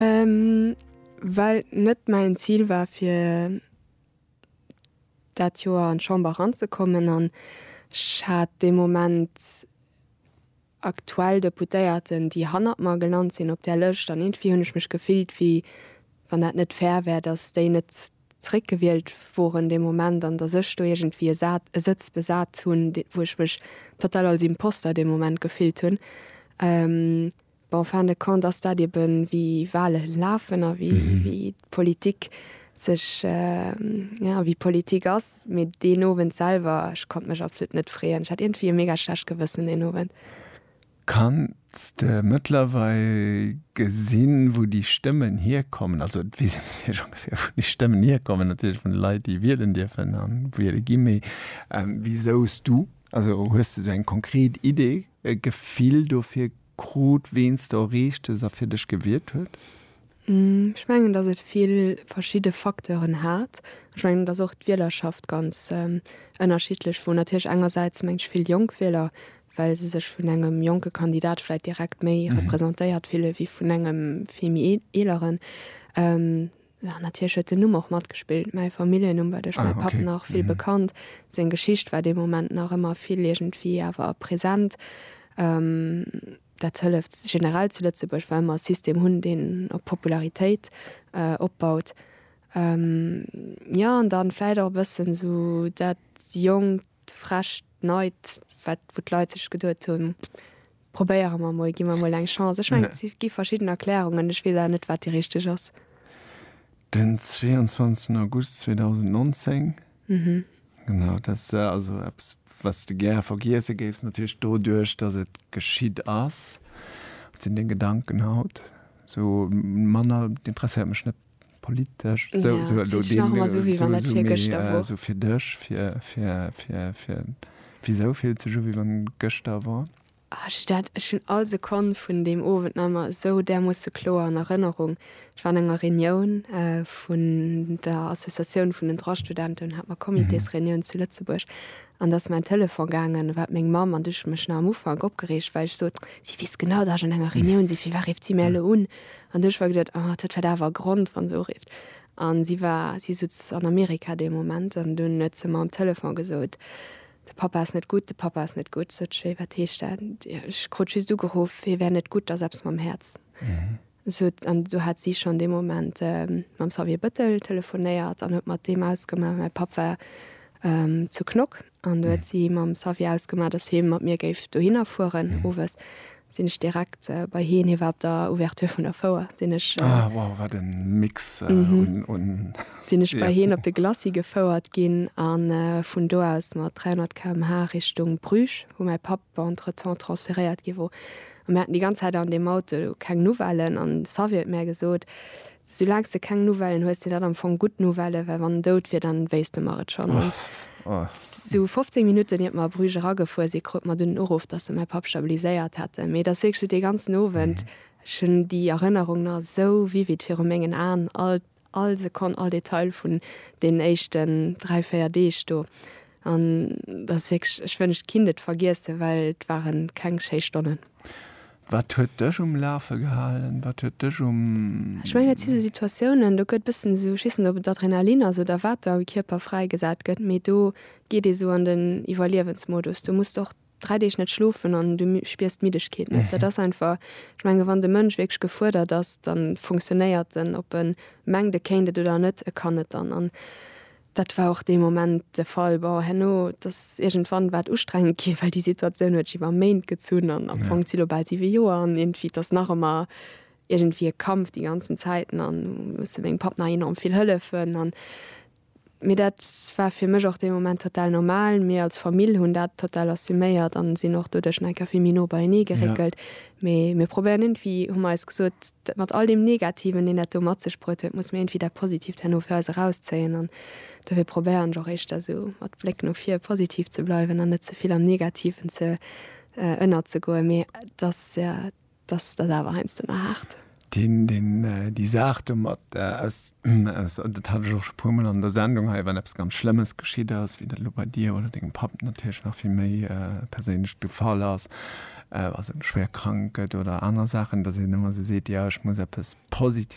Well net mäin Zil war fir dat Joer an d'Chamber eranzekommen an ech hat dee Moment aktuell Deputéierten, déi hannert mer gelant sinn op där Lëscht. An iergendwéi hunn ech mech gefillt, wéi wann dat net fair wär, datt déi net zréckgewielt woren dee Moment an datt ech do iergendwéi e Sa e Sëtz besat hunn, wou ech mech total als Imposter dee Moment gefillt hunn. Bon, fin de compte ass dat eben, wéi Wahle lafen a wéi d'Politik sech, jo, wéi d'Politik ass. Mee deen Owend selwer, ech konnt mech absolut net freeën. Ech hat iergendwéi e mega schlecht Gewëssen deen Owend. Kanns de mëttlerweil gesinn, wou déi Stëmmen hierkommen? Also, et weess een natierlech ongeféier, wou déi Stëmmen hierkommen, natierlech vun de Leit, déi wielen dierfen a wiele ginn. Mee wisou s du, also hues de esou eng konkret Idee? e Gefill dofir krut, ween s de erreecht hues a fir dech gewiert huet? Ech mengen, datt et vill verschidde Facteuren hat. Ech mengen, et ass och d'Wielerschaft ganz ënnerschiddlech, wou natierlech engersäits mengt vill jonk Wieler, well se sech vun engem jonke Kandidat vläit direkt méi representéiert fille wéi vun engem vill méi eeleren. Jo, natierlech huet den Numm och matgespillt. Mäi Familljennumm war duerch mäi Papp nach vill bekannt. Seng Geschicht war dee Moment nach ëmmer vill iergendwéi awer present. Dat hëlleft generell zu Lëtzebuerg, well mer e System hunn, deen op Popularitéit opbaut. Jo, an dann vläicht och e bëssen esou dat Jonkt, Frescht, Neit, wat, wou d'Leit sech geduet hunn, Probéiere mer mol, gi mer mol eng Chance. Ech mengen, et gi verschidden Erklärungen, ech weess awer net, wat déi richteg ass. Den 22 August 2019, genau, dat ass also eppes, wat s de gäre vergiesse géifs, natierlech doduerch, datt et geschitt ass. Wat sinn deng Gedanken haut? Esou manner, interesséiert mech net. politesch sou sou elo sou fir dech fir fir fir fir wisou fillt sech u wéi wann gëschter wor? Ech dat ech hunn all Sekonn vun deem Owend nach emmer sou därmoosse kloer an Erënnerung. Ech war an enger Reunioun vun der Associatioun vun den Droit-Studenten un hat mer Comitésreunioun zu Lëtzebuerg an da ass mäin Telefon gaangen, war et meng Mamm an du hu ech mech nach am Ufank opgereegt well ech sot si weess genau dat ech an enger Reunioun si fir wat rifft si mär elo un? An duerch war geduet, oh, et huet vläit awer e Grond, wa se urifft. An si war, si sutz an Amerika dee Moment. An dunn huet se mer am Telefon gesot, De Papa ass net gutt, de Papa ass net gutt. Sot ech, Wéi, wat heescht dat? Ech krut just ugeruff, hie wär net gutt, ass eppes mam Häerz. Sot, an du hat si schonn dee Moment mam Xavier Bëttel telefonéiert an huet mat deem ausgemaach. Mäi Papp war zu Knock. An du huet si mam Xavier ausgemaach, dass hie mat mir géif dohinner fueren. Owes sinn ech direkt bei hien, hie war op der Ouverture vun der Fouer, sinn ech. Ah, wow, wat e Mix un. Sinn ech bei hien op de Glacis gefouert ginn a vun do aus mat 300 km/h Richtung Bruges, wou mäi Papp entretemps transferéiert gi wor. A mir haten déi ganz Zäit an deem Auto keng Nouvellen an de Xavier huet mär gesot, Soulaangs de keng Nouvellen hues, sinn dat am Fong gutt Nouvellë, well wann en dout wier, dann wéisst de mer et schonn. An esou 15 Minutten iert mer a Bruges eragefuer sinn, krut mer dunn den Uruff, datt se mäi Papp stabiliséiert hätten. Mee et ass wierklech dee ganzen Owend, ech hunn déi Erënnerung nach esou vivid viru mengen Aen, all, all Sekonn, all Detail vun deenen éischten dräi, véier Deeg do. An dat ass wierklech, ech wënscht ech kinnt et vergiessen, well et ware keng schéi Stonnen. Wat huet dech um Lafe gehalen? Wat huet dech um. Ech mengen dat si sou Situatiounen, do gëtt e bëssen esou, ech weess net ob et Adrenalin ass oder wat da am Kierper fräigesat gëtt, mee do geet ee sou an den Iwwerliewensmodus. Do muss de och. dräi Deeg net schlofen an du spiers d'Middegkeet net. Dat ass einfach, ech menge wann de Mënsch wierklech gefuerdert ass, da funktionéiert en, ob e mengt e kéint et oder net, e kann et dann. An dat war och dee Moment de Fall. Bon, herno, et ass iergendwann war et ustrengend ginn, well déi Situatioun huet sech iwwer Méint gezunn an am Fong si lo bal siwe Joer an iergendwéi, et ass nach ëmmer iergendwéi e Kampf déi ganzen Zäiten an musse mengem Papp nach enorm vill hëllefen an Mee dat war fir mech och dee Moment total normal. Mir als Famill hunn dat total assuméiert an sinn och doduerch nach eng Kéier vill méi no beienee geréckelt. Mee mir probéieren iergendwéi, hu mer eis gesot, dat mat all deem Negativen, deen dat do mat sech bruet huet, musse mir iergendwéi dat Positiivt herno fir eis erauszéien. An dofir probéieren ech och éischter esou mat Bléck no vir positiv ze bleiwen an net ze vill am Negativen ze ënnerzegoen. Mee et ass. Dass dat awer heiansdo emmer haart. Déi Saach domat, dat hat ech och scho e puermol an der Sendung hei, wann eppes ganz Schlëmmes geschitt ass, wéi dat elo bei dir oder dengem Papp natierlech nach vill méi perséinlech de Fall ass, also schwéier krank gëtt oder aner Saachen, dass een ëmmer esou seet, jo ech muss eppes Positives.